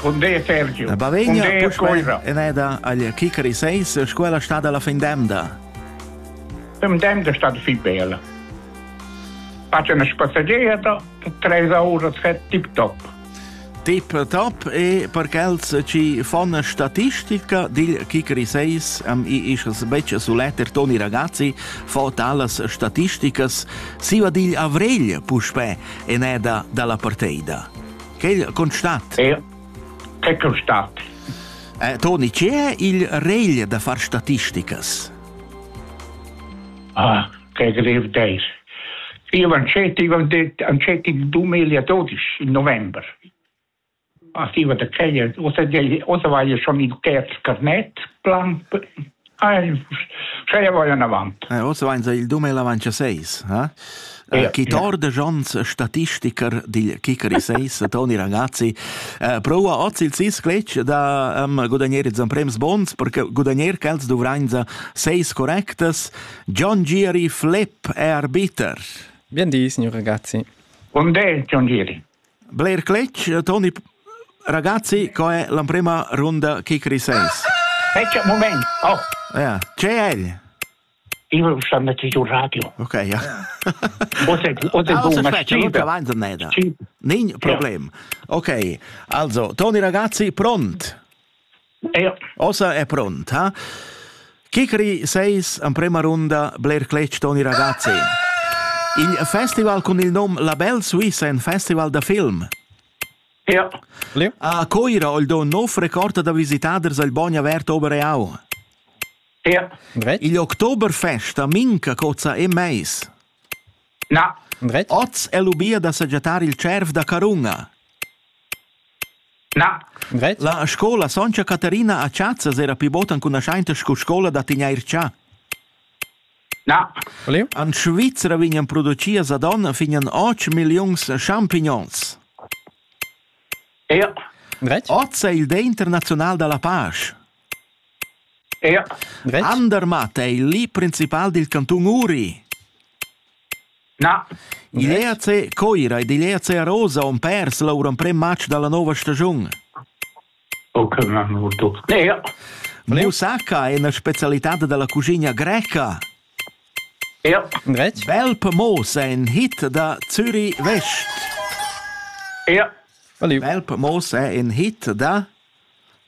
Pondé Sergio. La Bavegna eneda agl Kikari 6, scuola sta dalla fin d'emda. Dem d'emda sta fi bella. Faccio una spassaggetta, 3 ore tip top. Tip top e per quels ci fan statistica dil Kikri 6 am i ischas becce suletter Toni ragazzi fa talas statisticas siva digl avrigl puspè eneda dalla parteida. Quel constat. E che constat? Eh, Toni, che è il regl da far statisticas? Ah, che grev dei. Io ancetti, ancetti il 2012, in novembre. Arriva da Kenya, o se, o se vai schon il terzo carnet, plan Sche vai anavant. Eh, oz vain il 2026, eh? Yeah, chi tor de Jons statistiker dil Kikeri 6, Toni Ragazzi, eh, prova oz il sis cletg da um, gudagnere zan prems bons, perché gudagnere quels dovrain za seis correctas. John Giri Flip è arbiter. Bien di, signor Ragazzi. Un del John Giri. Bler cletg, Toni ragazzi, co è l'emprema runda kick recess? Aspetta un moment. Oh. Ja. C'è el? Io sto mettendo un radio. Ok, ja. Oder, oder ah, una sfida. Nin problem. Ok, also, Toni ragazzi, pront? Ossa è pronta. Kikri seis emprema runda bler cletg Toni Ragazzi. Il festival cun il nom La Belle Suisse è un festival da film. Ja. A Coira ho il do nov record da visitaders al Bogn avert Obereau. Ja. Il Oktoberfest a Minca cozza e meis. Oz è lubia da sajettar il tschierv da carunga. La scola Sontga Caterina a Tschazas era pli bod ancunaschainta sco scola da tegnair chà. En Svizra vegnan producias ad onn fin an 8 milliuns champignons. Oz è il Dé internaziunal da la pasch. Andermatt ei igl principal dil cantun Uri. Igl EAC Coira ed igl EAC Arosa han pers lur emprem matg dalla nova stagiun. Musaka è ina specialitad dalla cuschina greca. Bel Pamos è in hit da Zürich West. Bel Pamos è in hit da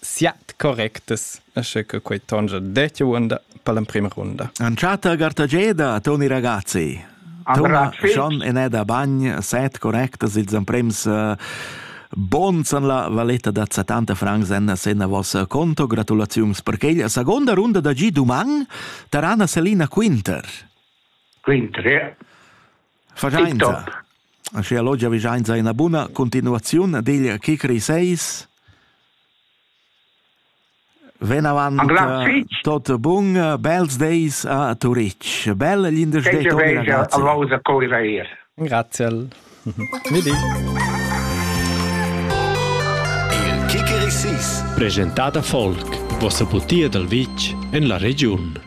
siat correctas asche che quei tongia detto unda per l'emprima runda. Anciata Gartageda, Toni ragazzi. Tona schon in eda bagn set correctas ils emprems uh, Bons an la valetta da 70 francs en senna vos conto, gratulaziums per quella seconda runda da Gi Duman, Tarana Selina Quinter. Quinter, ja. Vagiainza. Aschia logia vigiainza ina buna continuaziun digl Kikri 6. Venavant eh, tot bun, bels days a Turitg. Bel glindesdei Grazie. Grazie. Il Kikeri 6 presentà da Volk, vossa butia dal vitg en la regiun.